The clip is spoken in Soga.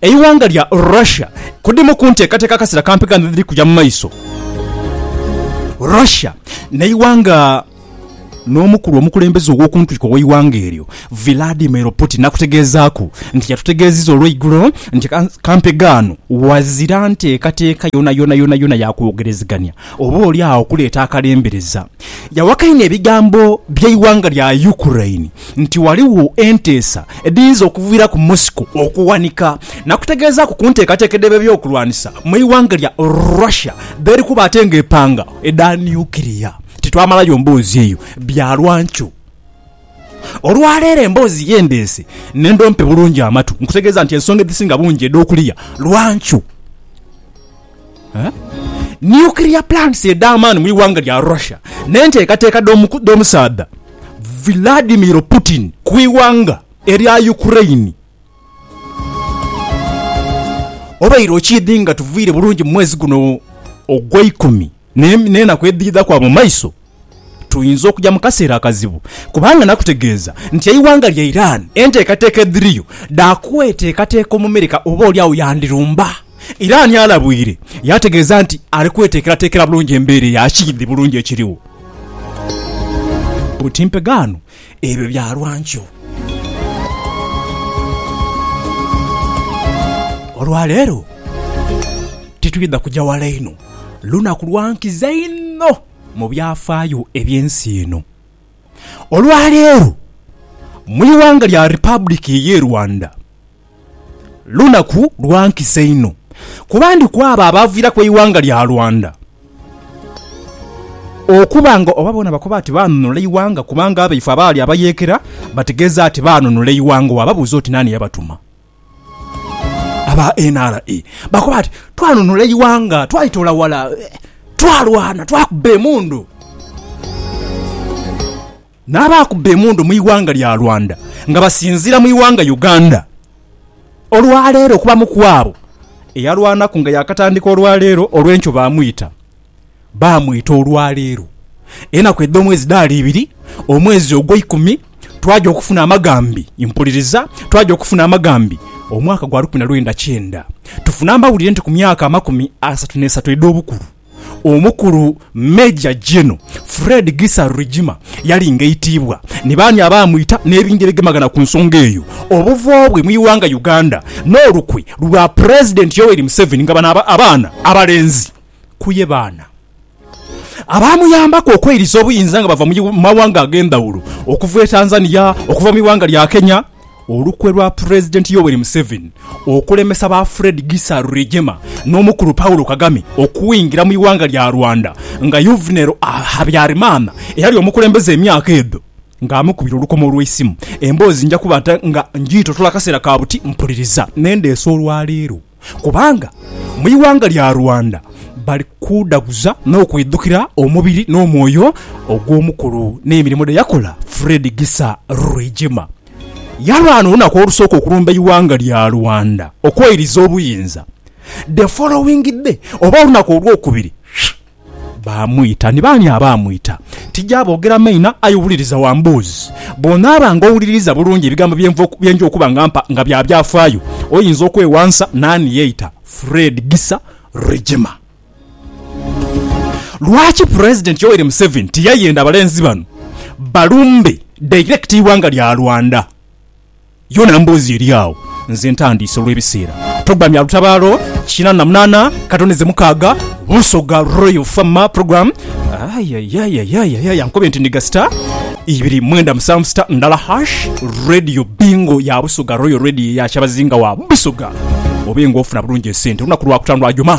Eighanga lya Russia kudimu kunteekateeka akasera kampi gano edhiri kuja mumaiso. Russia neighanga nomukulu omukulembeze owokuntiko oweighanga eryo Vladimir Putin nakutegeezaaku nti yatutegeeziza olweigulo nti kampi gaano ghazira nteekateeka yonayona yonayona yakwogerezegania oba oli agho okuleeta akalembereza. Yawakanya ebigambo byeighanga lya Ukraine nti ghaligho enteesa edhiyinza okuviiraku Moscow okuwanika nakutegeezaaku ku nteekateeka edh'ebyokulwanisa mu ighanga lya Russia dh'eri kuba ate nga epanga edha nuclear. Titwamalayo mboozi eyo bya lwankyo. Olwaleero emboozi ye ndeese nenda ompe bulungi amatu nkutegeeza nti ensonga edhisinga bungi edh'okuliya lwankyo. Nuclear plants edh'amaani mu ighanga lya Russia n'enteekateeka dh'omusaadha Vladimir Putin ku ighanga erya Ukraine. Obaire okiidhi nga tuviire bulungi mu mwezi guno ogweikumi? n'enaku edhidha kwa mu maiso, tuyinza okuja mu kaseera akazibu kubanga nakutegeeza nti eighanga lya Iran enteekateeka edhiriyo dha kweteekateeka Omumerika oba oli agho yandirumba. Iran alabwire yaategeeza nti ali kweteekerateekera bulungi embeera eya kiidhi bulungi ekirigho. Buti mpegaano Ebyo bya lwa nkyo. Olwa leero titwidha kuja wala inho. Lunaku lwa nkiza inho mu byafaayo eby'ensi eno. Olwa leero, mu ighanga lya Republic y'e Rwanda. Lunaku lwa nkisa inho, kuba ndi ku abo abaaviiraku eighanga lya Rwanda okuba nga oba boona bakoba ati baanunula eighanga kubanga abaife abaali abayeekera bategeeza ati baanunula eighanga. Waababuuza oti naani yabatuma, aba NRA bakoba ati, Twanunula eighanga, twalitoola ghala, twalwana, twakuba emundu. N'abakubba emundu mu ighanga lya Rwanda nga basinziira mu ighanga Uganda olwaleero okubamu kwabo eyalwanaku nga yakatandika olwaleero olwenkyo bamwita bamwita olwaleero enaku edhomwezi dhaali ibiri omwezi ogwa ikumi twaja okufuna amagambi mpuliriza twaja okufuna amagambi omwaka gwa lukumi na lwenda kyenda tufune amawulire nti ku myaka amakumi asatu nesatu edhobukulu Omukulu Major General Fred Gisa Rwigima yali ng'aitiibwa ni baani abaamwita n'ebingeregemagana ku nsonga eyo, obuvo bwe mu ighanga Uganda n'olukwe lwa Pulezidenti Yoweri Museveni nga bano abaana abalenzi ku ye baana abaamuyambaku okweiriza obuyinza nga bava mu mawanga ag'endhawulo okuva e Tanzania, okuva mu ighanga lya Kenya. Olukwe lwa Pulezidenti Yoweri Museveni okulemesa ba Fred Gisa Rwigema n'omukulu Paul Kagame okwingira mu ighanga lya Rwanda nga Yuvenel Habyarimana eyali omukulembeze emyaka edho nga amukubira olukomo olw'eisimu. Emboozi nja kuba nga njiitotola akaseera ka buti mpuliriza. N'endeese olwaleero. Kubanga mu ighanga lya Rwanda bali kuudhaguza n'okwidhukira omubiri n'omwoyo ogw'omukulu n'emirimo dhe yakola Fred Gisa Rwigema. Yalwana olunaku olusooka okulumba eighanga lya Rwanda okweiriza obuyinza. The following day oba olunaku olwokubiri, Baamwita. Ni baani abaamwita? Tija boogera maina, aye wuliriza wambuuzi. Bw'onaaba nga owuliririza bulungi ebigambo bye nja okuba nga mpa nga bya byafaayo, oyinza okwewansa naani yeita Fred Gisa Regema. Lwaki Pulezidenti Yoweri Museveni tiyayenda balenzi bano balumbe direct eighanga lya Rwanda? Yona mboozi eri agho, nze ntandiise olw'ebiseera. Programme Lutabaalo kina na munaana katoneze mukaaga Busoga Royal Farmer Program Ayayayayayaya nkobe nti ndiga star ibiri mwenda musanvu star ndala hash Radio Bingo ya Busoga Royal Radio ya Kyabazinga wa Busoga obe nga ofuna bulungi esente olunaku lwakutaano lwa Juma.